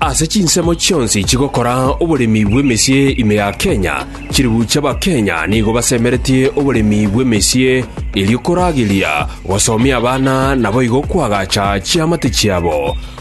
Ase chinsemo chionsi chigokora oboremi bw'emesie ime ya Kenya, chilifu chi'Abakenya nigo basemeretie oboremi bw'emesie erio korageria gosomia abana naboigo koagacha chiamate chiabo.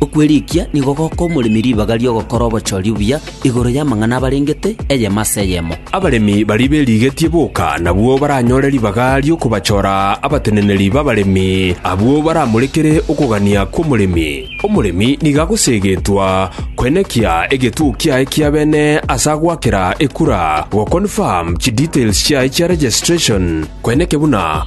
Okwerikia nigo goka omoremi ribaga ri'ogokora obochori obuya igoro y'amang'ana abarengete, eyemo ase eyemo. Abaremi baria berigetie boka nabwo baranyore ribaga ri'okobachora abateneneri b'abaremi, abwo baramorekere okogania kw'omoremi. Omoremi nigo agoseegetwa koenekia egetuo kiaye kia bene ase agoakera ekura, go-confirm chidetails chiaye chia registration, koeneke buna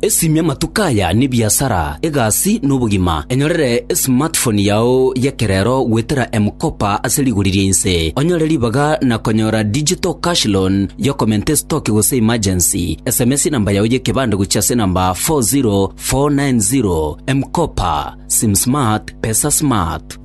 Esimia amatuko aya nebiasara, egasi, na obogima. Enyorere esmartphone yao y'ekerero goetera M-Kopa ase rigori ria inse, onyore ribaga na konyora digital cash loan y'okomenta estoki gose emergency. Sms enamba yao y'ekebande gochia ase enamba 40490. M-Kopa. Sim smart, pesa smart.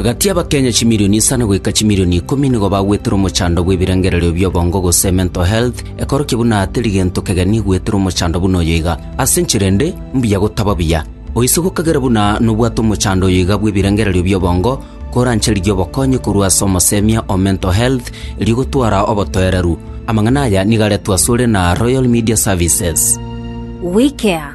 Gati y'Abakenya chimilioni isano goika chimilioni ikomi nigo bagwetire omochando bw'ebirengererio bi'obongo gose mental health, ekorokia buna teri gento kegeni gwetira omochando buna oyo iga. Ase enchera ende, mbuya gotaba buya. Oise gokagera buna nobwate omochando oyo iga bw'ebirengererio bi'obongo, korancharigia obokonyi korwa ase omosemia o mental health erio gotwara obotoereru. Amang'ana aya nigo aretwe asore na Royal Media Services. WeCare.